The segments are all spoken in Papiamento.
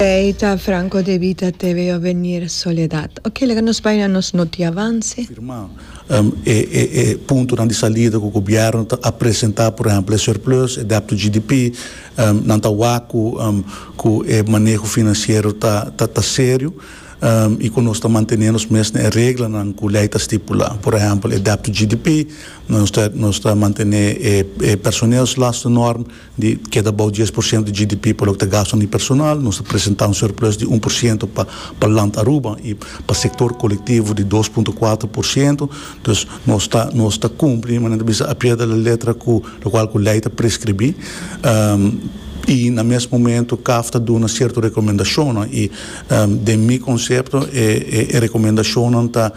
Ei ta Franco de Vita TV o Venir Soledad. Oke, laga nos bai na nos notiavanse. firmá e puntonan di salida ku gobièrnu ta a presentá, por ehèmpel e surplus, e dèbt to GDP, nan ta wak ku ku e maneho finansiero ta ta serio i ku nos ta mantené nos mes na e reglanan ku lei ta stipulá, por ehèmpel e dèbt to GDP, nos ta nos ta mantené e personeelslastennorm. di keda bou dies por siento di GDP pa loke ta gasto di personal, nos a presenta un surplus di un por siento pa pa Land Aruba y pa sector colectivo di dos punto cuatro por siento, entonces nos ta nos ta cumpli manera ta bisa a pie de la letra cu locual cu ley ta prescribi y na mes momento caf ta duna cierto recomendacionnan y den mi concepto e e recomendacionnan ta.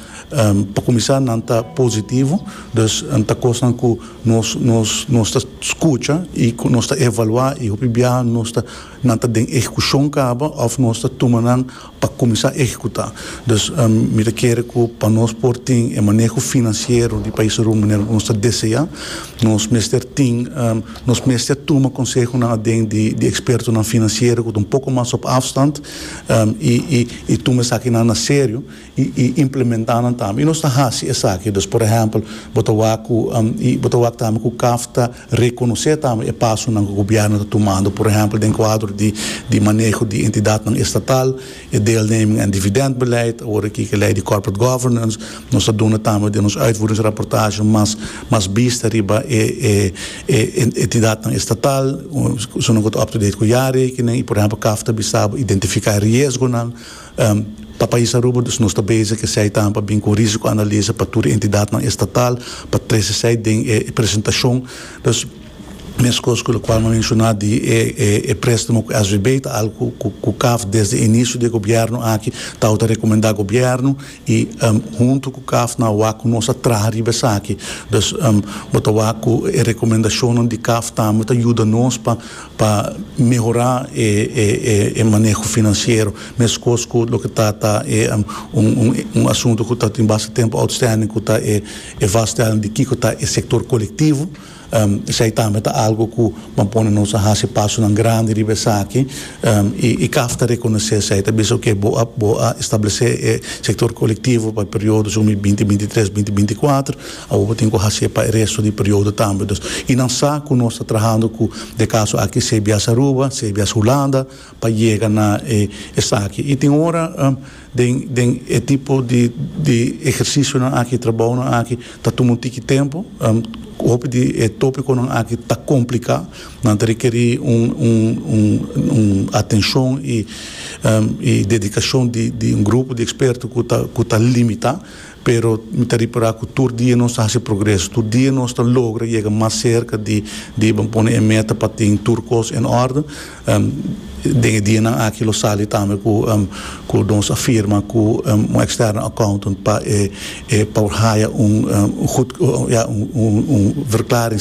Pa kuminsá nan ta positivo, dus ta kosnan ku nos nos nos ta skucha i ku nos ta evaluá i hopi biaha nos ta nan ta den ehekushon kaba òf nos ta tuma nan pa kuminsá ehekutá. Dus mi ta kere ku pa nos por tin e maneho finansiero di Pais Aruba manera ku nos ta deseá, nos mester tin nos mester tuma konsehonan aden di di ekspertonan finansiero ku ta un poko mas op afstand i i i tuma esakinan na serio. i implementá nan tambe. I nos ta hasi esaki. Dus por ehèmpel, bo ta wak ku i bo ta wak tambe ku caf ta rekonosé tambe e pasonan ku gobièrnu ta tumando, por ehèmpel den kuadro di di maneho di entidatnan estatal, e deelneming en dividèntbeleid, awor e kiki lei di corporate governance. Nos ta duna tambe den nos uitvoeringsrapportasje mas mas bista riba e e e entidatnan estatal, zones ku ta up-to-date ku jarekening i por ehèmpel caf ta bisa bo identifiká e riesgonan. Pa pais Aruba dus nos ta bezig esei tambe bin ku risiko analisa pa tur e entidatnan estatal pa trese esei den e presentashon. Dus meskos ku lokual mi a menshoná di e préstamo ku SVB ta algu ku kaf desde inisio di e gobièrnu aki tawba ta rekomendá gobièrnu i huntu ku kaf nan a wak ku nos a traha riba esaki. Dus bo ta wak ku e rekomendashonnan di kaf tambe ta yuda nos pa Pa mehorá e maneho finansiero, meskos ku loke ta ta e un asuntu ku ta tin basta tempu outstanding ku ta e vaststelling di kiko ta e sektor kolektivo. Esei tambe ta algu ku ban pone nos a hasi pasonan grandi riba esaki i caf ta rekonosé esei, ta bisa oke bo a bo a establesé e sektor kolektivo pa e periodo sumi binti binti tres, binti binti kuater, Awo bo tin ku hasié pa e resto di periodo tambe. Dus i nan sa ku nos ta trahando ku de kaso aki cbs Aruba, cbs Hulanda pa yega na e esaki. I tin ora den den e tipo di di ehersisionan aki, trabounan aki ta tuma un tiki tempu. Hopi di e topikonan aki ta kompliká, nan ta rekerí un un un un atenshon i i dedikashon di di un grupo di eksperto ku ta ku ta limitá. Pero mi ta repará ku tur dia nos ta hasi progreso. Tur dia nos ta logra yega mas serka di diba pone e meta pa tin tur kos en òrden. Den e dianan aki lo sali tambe ku nos a firma ku un eksterno accountant pa e haya un gud, ya, un verklaring.